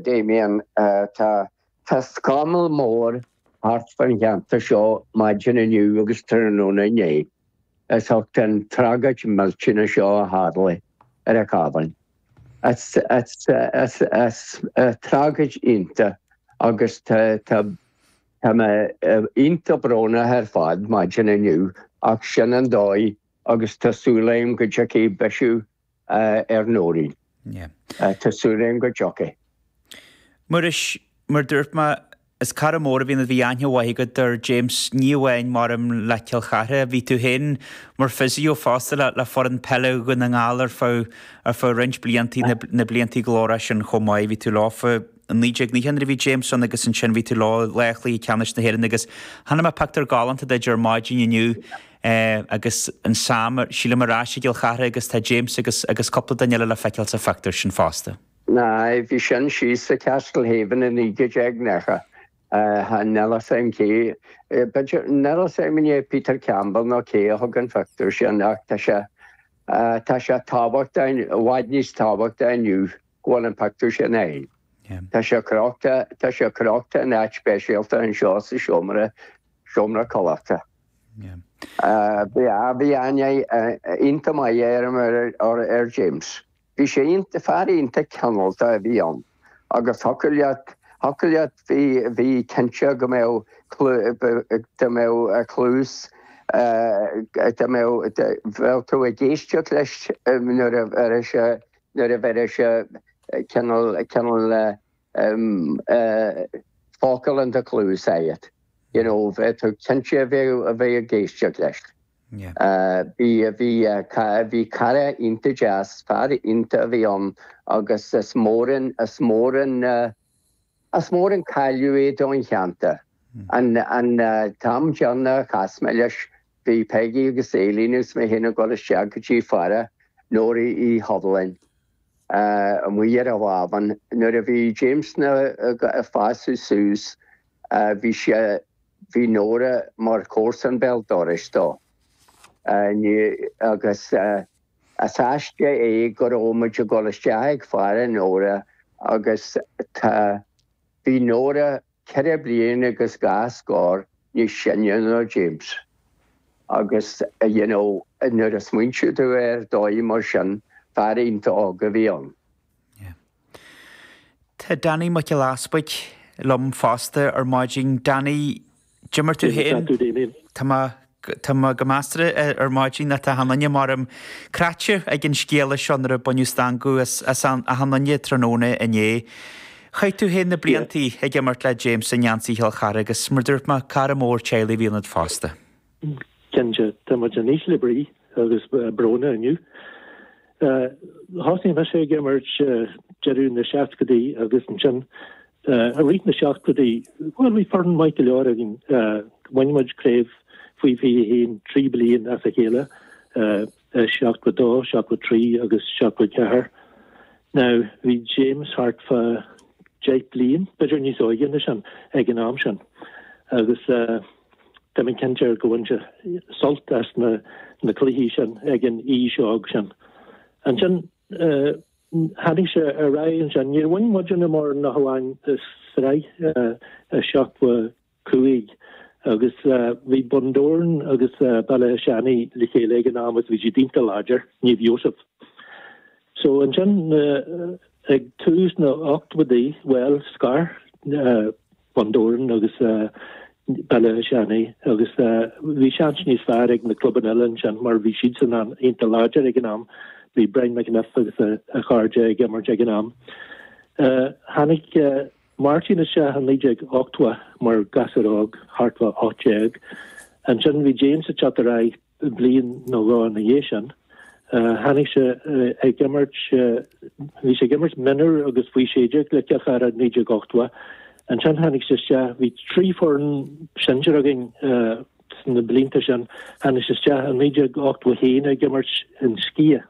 Damien, Tá scamall mór thart faoin cheantar seo maidin inniu agus tráthnóna inné as ucht an tragóid millteanach seo a tharla ar an Chábhán. Tragóid iontach agus tá mé iontach brónach ar fad maidin inniu ach sin an dóigh agus tá súil agam go dtiocfaidh bisiú ar Nóirín. Tá súil agam go dtiocfaidh. Muiris, Mar dúirt mé, is cara mór a bhí ann bhí aithne mhaith agat ar James ní amháin mar im le Cill Chartha, bhí tú féin mar physio fosta le le foireann peile Dhún na nGall ar feadh ar feadh roinnt blianta, na blianta glórmhara sin chomh maith, bhí tú leofa. I 1990 nuair a bhí James ann agus ansin bhí tú leo lá Chluiche Ceannais na hÉireann agus chonaic mé pictiúr galánta duit ar maidin inniu agus an Sam sílim ar ais i gCill Chartha agus tá James agus agus cúpla duine eile le feiceáil sa phictiúr sin fosta. Aye, bhí sin síos i Castlehaven i 1990. Níl 'fhios a'm cé, níl 'fhios a'm an é Peter Campbell nó cé a thóg an phictiúr sin ach tá sé, tá sé tábhachtach, i bhfad níos tábhachtaí inniu. go bhfuil an pictiúr sin ann. Tá sé crochta, tá sé crochta in áit speisialta anseo sa seomra, seomra codlata. Bhí, á, bhí aithne iontach maith air, ar James. Bhí sé iontach, fear iontach cineálta a bhí ann. Agus thiocfadh leat, thiocfadh leat, bhí, bhí cinnte go mbeadh clú, go mbeadh cluas, go mbeadh, bheadh tú ag éisteacht leis nuair a, ar sé, nuair a bheireadh sé cineál focal in do chluas agat, you know, tú cinnte a bheith ag éisteacht leis. Bhí cara iontach deas, fear iontach a bhí ann agus is mór an. Is mór an cailleadh é don cheantar. An t-am deireanach a chas mé leis, bhí Peigí agus Eilín agus mé féin ag dul isteach go dtí faire Nóra Uí Shovlin amuigh ar an Bhábhán. Nuair a bhí James ag fás suas, bhí sé, bhí Nóra mar chomharsan béal dorais dó. Is aisteach é Go raibh muid ag dul isteach ag faire Nóra agus tá Bhí Nóra ceithre bliain agus dhá scór níos sine ná James agus you know nuair a smaointíonn tú ar dóigh mar sin fear iontach óg a bhí ann. Tá Danny Mac Giolla Easpaig liom fosta ar maidin. Danny, cad é mar tá tú féin. Tá mé, tá mé go measartha ar maidin, ná tá achan nduine m'anam cráite ag an scéala seo nuair a baineadh stangadh as, as an, as achan nduine tráthnóna inné. Chaith tú féin na blianta ag imirt le James i ngeansaí Chill Chartha agus mar dúirt mé, cara mór teaghlaigh a bhí ionat fosta. Cinnte tá muid in ísle brí agus bróna inniu? Thosnaigh mise ag imirt deireadh na seascadaí agus ansin i rith na seachtóidí, bhuel bhí foireann maith go leor againn. Bhain muid craobh faoi 21 trí bliain as a chéile, 72, 73 agus 74. Now, bhí James thart fá deich bliain, b'fhéidir níos óige ná sin, ag an am sin, agus tá mé cinnte go bhain sé sult as na cluichí sin ag an aois óg sin. Ansin, tháinig sé ar aghaidh ansin, níor bhain muidinne mórán ach amháin sraith, 70, cúig. Agus bhí Bundoran agus Béal Átha Seanaidh le chéile ag an am agus bhí siad iontach láidir, Naomh Iósaf. So ansin ag tús na n-ochtóidí, bhuel, scar Bundoran agus Béal Átha Seanaidh agus bhí seans níos fearr ag na clubanna eile ansin mar bhí siadsan iontach láidir ag an am. Bhí Brian McEniff agus a chairde ag imirt ag an am. Tháinig. Martin isteach i 1980 mar ghasúr óg, thart fá 18. Ansin bhí James ag teacht ar aghaidh bliain nó dhó ina dhiaidh sin. Tháinig sé ag imirt, bhí sé ag imirt mionúr agus faoi 16 le Cill Chartha i 1980. Ansin tháinig sé isteach, bhí trí foireann sinsir againn sna blianta sin, tháinig sé isteach i 1981 ag imirt in Sciath.